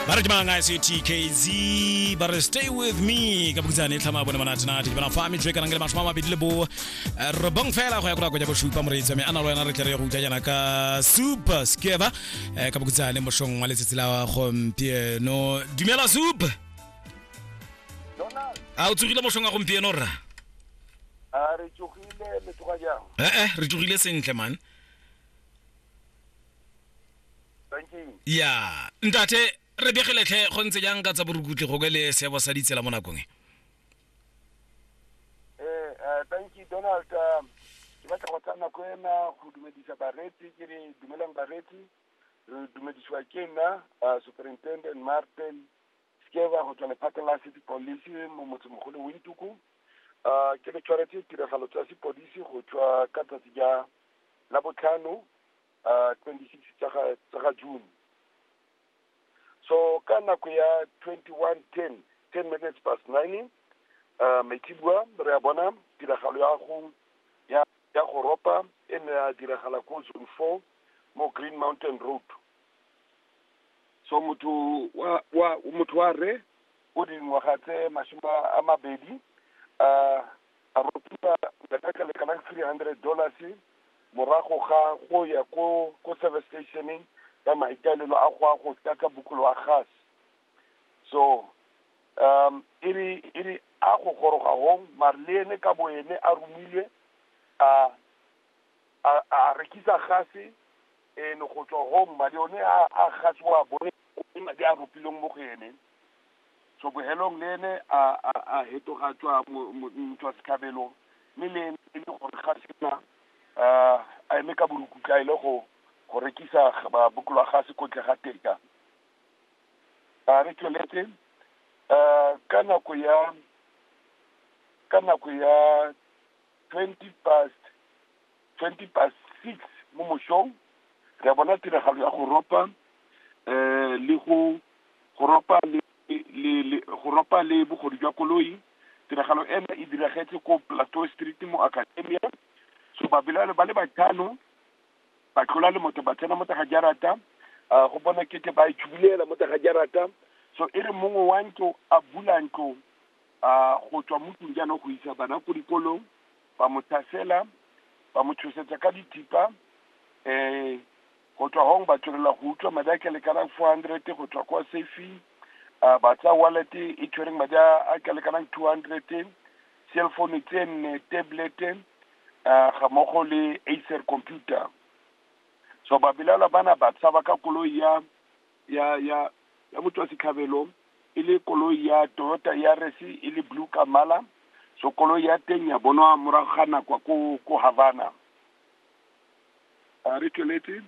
ba re ke manganga se tkz ba re stay with me ka bokitsane e tlhama bone manatinati ke bana fa metswe ka nangele masome a mabedi le bo eh, robong fela go ya kora koja bosupa moreetsi wa me a na le wena re tle re ye go utlwa jaana ka super skeba eh, ka bokitsane mošong wa letsatsi la gompieno dumela soup a o tsogile mošong wa gompieno rra a re tsogile le tloga jang ee re tsogile sentle man thank you ya ntate re begeletlhe go ntse jang ka tsa borukutlhi go ke le seebo sa ditsela mo nakong e eh eh, thank you donald um, ke batla go tsaya nako ena go dumedisa bareetsi ke re dumelang bareetsi re dumedisiwa ke nna uh, superintendent martin skeva go tswa lephata la city police mo motsemogolo wintuku uh, ke le tshwaretse tiragalo tsa sepodisi go tswa ka tsatsi ja la botlhano twenty six tsa ga, tsa ga June. So ka nako ya twenty one ten, ten minutes past nine, uh, maitsibua re a bona tiragalo ya go ya ya go ropa e ne ya diragala ko zone four mo Green Mountain Road. So motho wa wa motho wa re o dingwaga tse masome a mabedi uh, A ropiwa letheka le kanang three hundred dollars morago ga go ya ko ko service stationeng ka maikaelelo a go a go tlatsa bokolo wa gas so um e re e re a go goroga hong mare le ene ka bo ene a romilwe a a a rekisa gase ene go tswa hong madi one a a gase wa bone ke madi a ropilweng mo go ene Tsobogelong le ene a, a, a hetoga tswa mo, mo, motswa setlhabelo, mme le ene e le gore ga se na, a, a eme ka borukutla a ile go, go rekisa ga ba bokologase ko ntle ga teka. A re tsweletse, a, ka nako ya, ka nako ya twenty past, twenty past six mo mosong, re a bona tiragalo ya go ropa, le go, go ropa le le le le, go ropa le bogodu jwa koloi, tiragalo eno e diragetse ko Plateau Street mo Academia, so babelaelwa ba le batlhano, ba tlola le motho ba tsena mo teng ga jarata, go bonwa e kete ba itshubulela mo teng ga jarata, so e re mongwe wa ntlo a bula ntlo. a go tswa mo tlong jaanong go isa bana ko dikolong ba mo tlhasela ba mo tshosetsa ka dithipa um go tswa gong ba tswelela go utswa madi a ka lekanang four hundred go tswa kwa safing a ba tsaya wallet e tshwereng madi a ka lekanang two hundred cell phone tse nne tablet um ga mmogo le acer computer so ba belaelwa bana ba tshaba ka koloi ya ya, ya, ya motswasetlhabelo, e le koloi ya Toyota Yaris e le blue ka mmala, so koloi ya teng ya bonwa morago ga nakwa ko, ko Havana. A re tsweletse.